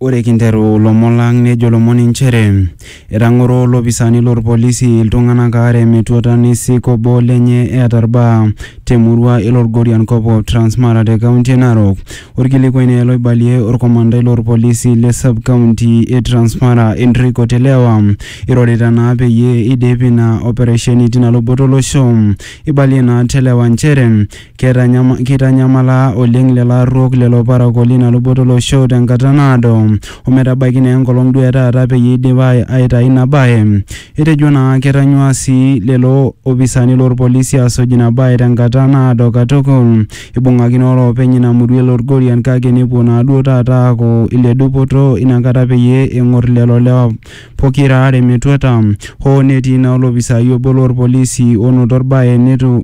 Ore kinteru ilomon lang nejo ilomon inchere etang'oro ilopisaani lorpolisi iltung'anak aare metuata neisik obo lenye eeta irbaa temurua e Lorgorian kop o Transmara te kaunti e Narok. Orkilikuai naa ele oibalie orkomandai lorpolisi le sub county e Transmara Enrico Telewa irorita naa peyie eidipi ina operesheni tina luboto olosho. Eibalie naa Telewa inchere Keitanyamala oleng lelo arruok lelo parakuo leina luboto olosho tenkata naado ometabaiki naa enkolong duo etaata peyie eidip aitayu ina bae. Etejo naa ketanyua sii lelo opisani loo lpolisi aasuj ina bae tenkata naado katukul. Eibung'aki naa oloopeny ina murua e Lorgorian kake nepuo naa duo taata aaku ile dupoto ina kata peyie eng'or lelo lewa pokira aare metuata hoo netii naa olopisai obo loo lpolisi onoto olbae neitu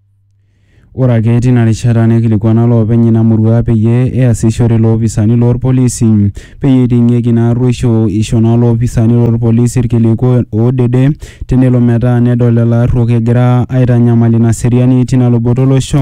Ore ake tina rishata neikilikuana loopeny ina murua peyie easishore loopisani loo lpolisi peyie eiting'ieki ina arruoisho. Eisho naa loopisani loo lpolisi ilkiliku oodede tenelo metaa nedol lelo arruok egira aitanyamal ina seriani tina luboto olosho.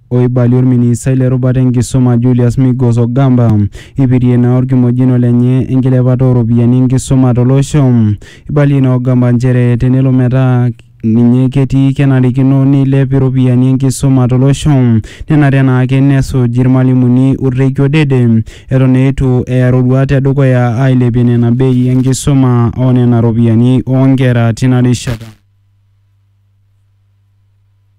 Oibalie olministai le rubata e nkisuma Julius Migos Ogamba eipirie naa olkimojino lenye enkilepata oo ropiyiani e nkisuma to losho. Eibalie ina Ogamba nchere tenelo metaa ninye ketii kenarikino neilep iropiyiani e nkisuma to losho. Nenare naa ake nesuj ilmalimuni olreikio dede eton eitu eya roruat e dukuya aailepie nena bei e nkisuma o nena ropiyiani oo nkera tina rishata.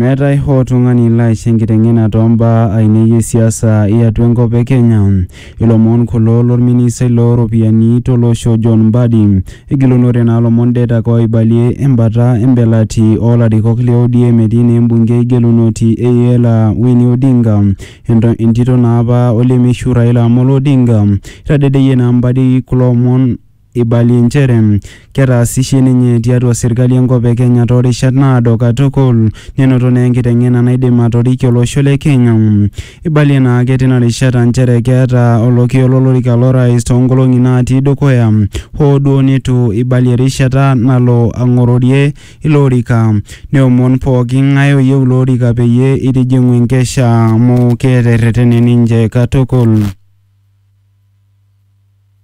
Meetae hoo tung'ani laaisho enkiteng'ena too mbaa ainei e siasa e atua enkop e Kenya. Ilomon kulo lo lministai loo ropiyiani to losho John Mbadi. Egilunore naa lomon det ake oibalie embata embelati oo larikok le ODM etii naa embungei gelunoti e Iela Winnie Odinga entito naa apa o lemeishiu Raila Amolo Odinga. Eitadedeyie naa Mbadi kulo omon. Eibalie nchere ketaasishe ninye tiatua serkali enkop e Kenya too rishat naado katukul nenoto naa enkiteng'ena naidim atoriki olosho le Kenya. Eibalie naa ake tina rishata nchere keeta olokiyo lo lorika lo rais too nkolong'i naatii dukuya hoo duo neitu eibalie erishata nalo ang'ororie ilo orika neomon pooki ng'ae oyieu ilo orika peyie eitijing'u enkesha amu keeta erretene ninche katukul.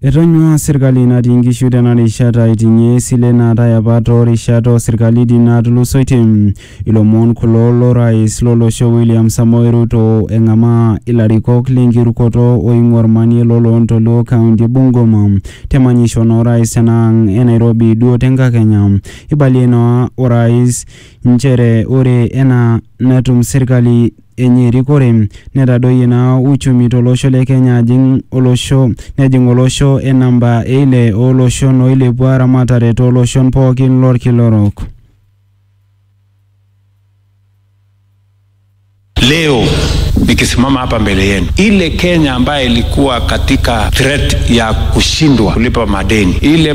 Etonyuaa serkali natii nkishu tena rishata aiting'ie esile naatae apa too rishat oo serkalitin naatulusoitie. Ilomon kulo lo rais lo losho William Samoei Ruto eng'amaa ilarikok le nkirukoto oing'ua olmanie lo loontoluo kaunti e Bungoma te manyisho naa orais tena ang' e Nairobi duo te nkakenya. Eibalie naa orais nchere ore enaa netum serkali enye erikore netadoyie naa uchumi tolosho le Kenya ajing olosho nejing olosho e namba e ile ooloshon oilepua ramatare tooloshon pookin lolkila orok. Leo nikisimama hapa mbele yenu, ile Kenya ambayo ilikuwa katika threat ya kushindwa kulipa madeni, ile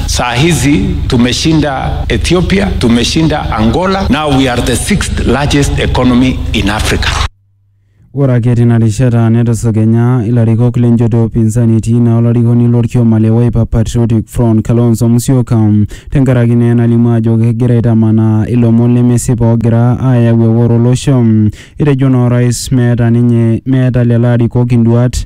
Saa hizi tumeshinda Ethiopia, tumeshinda Angola. Now we are the sixth largest economy in Africa. Ore ake tina rishata netusukenya ilarikok lenjoto e upinzani etii naa olarikoni lorkioma le Wiper Patriotic Front Kalonzo Musyoka tenkaraki naa enalimu ajo kegira aitamanaa ilomon lemesipa oogira aayau eworo olosho. Etejo naa orais meeta ninye meeta lelo arikok induaat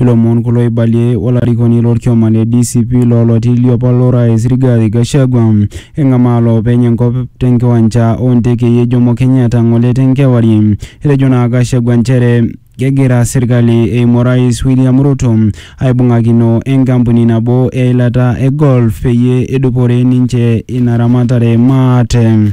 Ilomon kulo eibalie olarikoni lolkioma le DCP loo loti liopa lorais Rigathi Gachagua eng'amaa loopeny enkop tenkiwanja oo ntekei e Jomo Kenyatta ng'ole tenkewarie. Etejo naa Gachagua nchere kegira serkali eimu orais William Ruto aibung'akino enkampuni nabo e eilata e Gulf peyie edupore ninche ina ramatare maate.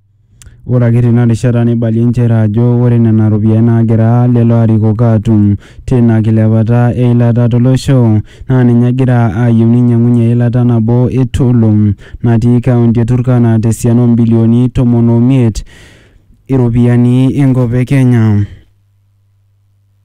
Ore ake tina rishata neibalie nchere ajo ore nena ropiyiani naagira lelo arikok aatum tina kilepata e ilata to losho naa ninye egira aayieu neinyang'unye eilata nabo e Tulum natii kaunti e Turkana te siana o mbilioni tomon o miet iropiyiani enkop e Kenya.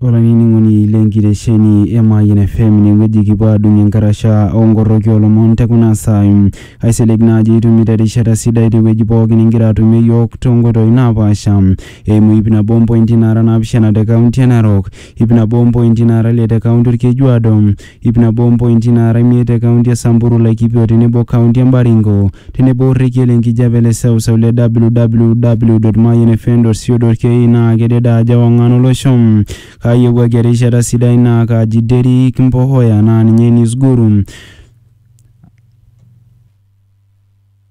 olainining'oni le nkitesheni e Mayian FM inewueji kipuo aadung enkarasha oonkorroki oolomon te kuna saai. Aisilig naa ajo itumito erishata sidai tewueji pookin igira atumie iyiook toonkoitoi naapaasha eimu ip nabo ompointi naara naapishana te kaunti e Narok, ip nabo ompointi naara ile te kaunti Olkejuado, Ip nabo ompointi naara imiet te kaunti e Samburu, Laikipia o tenebo kaunti e Baringo, tenebo orrekie le nkijape le seuseu le www.mayianfm.co.ke naa kedede ajo ewang'an olosho. Kaayiewuaki erishata sidai naa kaaji Derrick Mpohoya naa ninye News Guru.